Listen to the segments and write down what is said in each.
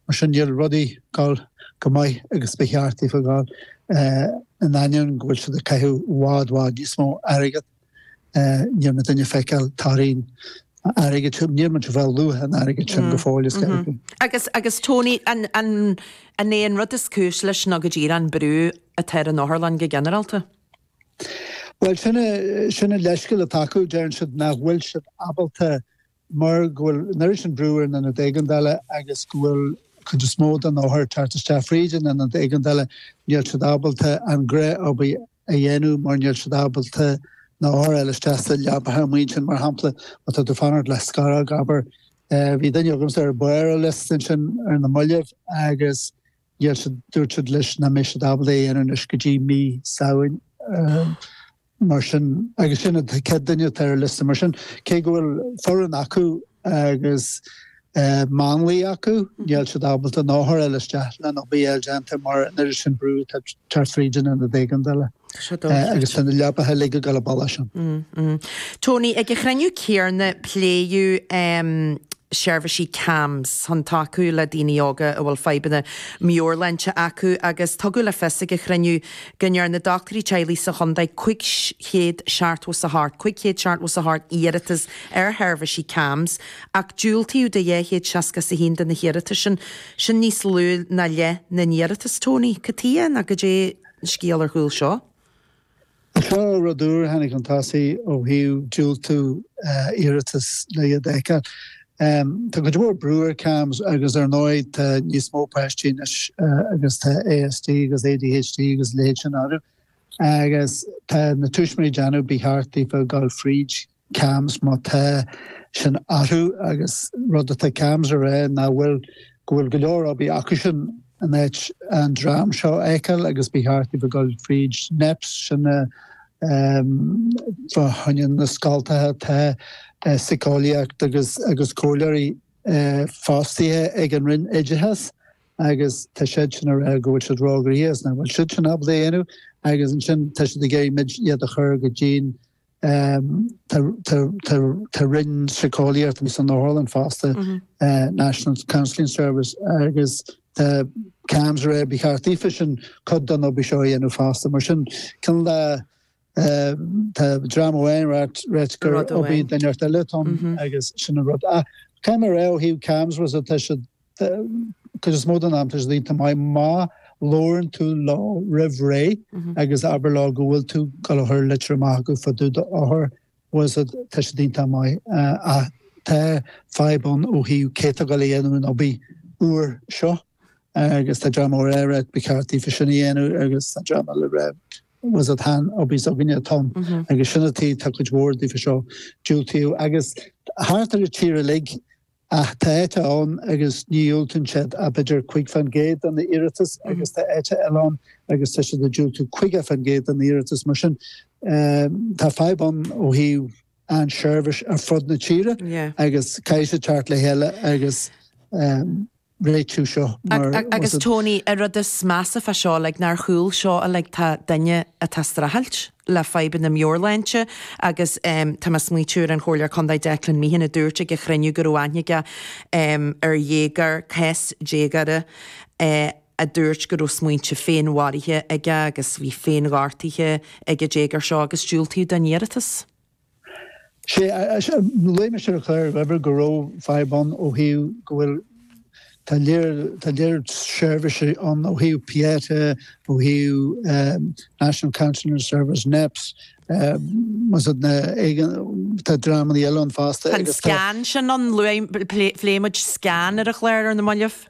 Mar sin, níl rudaí ag gabháil chomh maith agus ba cheart daofa gabháil, in ainneoin go bhfuil siad ag caitheamh i bhfad bhfad níos mó airgead. Níl muidinne ag feiceáil toradh an airgid sin, níl muid ag fáil luach an airgid sin go fóill, is dóigh liom. Agus, agus Tony, an, an, an é an rud is cúis leis ná go díreach an brú atá ar an otharlann go ginearálta? Bhuel, sin, sin an leithscéal atá acu, deireann siad nach bhfuil siad ábalta mar go bhfuil an oiread sin brú ar an ionad éigeandála agus go bhfuil an chuid is mó de na hothair ag teacht isteach fríd an ionad éigeandála, níl siad ábalta a gcuid oibre a dhéanamh mar níl siad ábalta na hothair a fháil isteach sna leabaithe amuigh ansin, mar shampla, má tá tú ag fanacht le scárág, abair. Bhí duine agamsa ar bharr an liosta ansin ar na mallaibh agus Gheall siad, dúirt siad leis nach mbeidh siad ábalta é a dhéanamh anois go dtí mí Samhain. Mar sin, agus sin an chéad duine atá ar an liosta. Mar sin, cé go bhfuil foireann acu agus máinliaigh acu, níl siad ábalta na hothair a fháil isteach leis an obair a fháil déanta mar an oiread sin brú atá ag teacht fríd an ionad éigeandála. agus tá na leabaithe uilig ag dul i bpoll as sin. Tony, ag an chruinniú céarna pléadh seirbhísí CAMHS chun tacú le daoine óga a bhfuil fadhbanna meabhairshláinte acu agus tugadh le fios ag an chruinniú go ndearna dochtúirí teaghlaigh sa chontae 578 578 iarratas ar sheirbhísí CAMHS ach diúltaíodh do 261 de na hiarratais sin. Sin níos lú ná leith na n-iarratas, Tony. Cad chuige nó goidé? an scéal ar chúl seo. Seo rud úr a tháinig chun tosaigh ó thaobh diúltú iarratas le iad a fheiceáil. Tá cuid mhór brú ar CAMHS agus ar ndóigh tá níos mó páistí anois agus tá ASD agus ADHD agus a leithéid sin orthu agus tá na tuismitheoirí ag déanamh ba cheart daofa dul fríd CAMHS má tá sin orthu agus rud atá CAMHS ag rá ná bhfuil go bhfuil go leor oibre acusan in áit an dream seo a fheiceáil agus ba cheart daofa gabháil fríd NEPS sin fá choinne na scoltacha tá síceolaíocht agus agus comhairleoirí fostaithe ag an Roinn Oideachais agus tá siadsan ag rá go bhfuil siad róghnóthach is nach bhfuil siadsan ábalta é a dhéanamh agus ansin tá siad ag iarraidh muid iad a chur go dtí an Tá Roinn Síceolaíochta san Otharlann fosta, National Counselling Service, agus tá CAMHS ag rá, ba cheart daofa sin cuid den obair seo a dhéanamh fosta. Mar sin, cineál tá dream amháin ag rá gur obair duine inteacht eile atá ann agus sin an rud atá mé ag rá ó thaobh CAMHS agus tá siad cuid is mó den am tá siad iontach maith, má labhrann tú leo roimh ré agus abair leo go bhfuil tú dul a chur litir amach chucu fá dtaobh d'othar, bhfuil fhios agat tá siad iontach maith ach tá fadhb ann ó thaobh cé tá dul a dhéanamh an obair seo agus tá dream ag rá ba cheart daofa sin a dhéanamh agus tá dream eile rá bhfuil fhios agat chan obair s'againne atá ann agus sin an tuige tá cuid mhór daofa seo diúltaithe agus thart ar an tír uilig Ach tá áit ann agus ní dhiúltaíonn siad ach b'fhéidir cúig fán gcéad de na iarratas agus tá áit eile ann agus tá siad ag diúltú caoga fán gcéad de na iarratas. Mar sin tá fadhb ann ó thaobh an seirbhís ar fud na tíre agus caithfidh siad teacht le chéile agus. réitiú seo, mar a. Agus Tony, an rud is measa fá seo uilig ná ar chúl seo uilig tá duine atá streachailt le fadhbanna meabhairshláinte agus em tá mé smaointiú ar an Chomhairleoir Contae Declan Meehan a dúirt ag an chruinniú go raibh aithne aige em ar dhéagóir, cás déagóra eh a dúirt go raibh smaointe féinmharaithe aige agus bhí féinghortuithe ag an déagóir seo agus diúltaíodh don iarratas. Sé luaigh mise ar an chlár abair go raibh fadhb ann ó thaobh go bhfuil tá tá lear seirbhísí ann ó thaobh Pieta, ó thaobh National Counseling Service, NEPS, bhfuil fhios agat na tá dreamannaí eile ann fosta. Tá an SCAN sin ann, luaigh, phléigh muid SCAN ar an chlár ar na maillibh.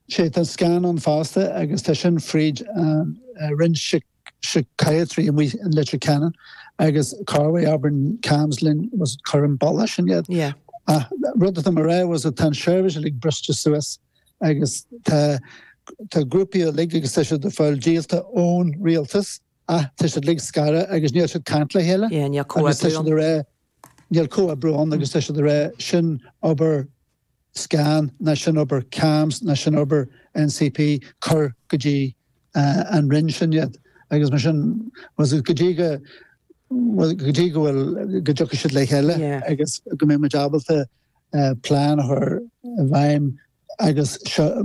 Sé tá an SCAN ann fosta agus tá sin fríd an Roinn Sic. Psychiatry amuigh in Leitir Ceanainn agus corruair abrann CAMHS linn bhfuil fhios agat cuir an bealach sin iad. Yeah. Ach rud atá mé ag rá bhfuil fhios agat tá an seirbhís uilig briste suas agus tá tá grúpaí uilig agus tá siad ag fáil díolta ón rialtas ach tá siad uilig scartha agus níl siad caint le chéile. Yeah, níl comhoibriú ann. Níl comhoibriú ann agus tá siad ag rá sin obair SCAN ná sin obair CAMHS ná sin obair NCP cuir go dtí an roinn sin iad agus mar sin go dtí go bhfuil, go dtí go bhfuil, go dtiocfaidh siad le chéile agus go mbeidh muid ábalta plean a chur i bhfeidhm agus seo.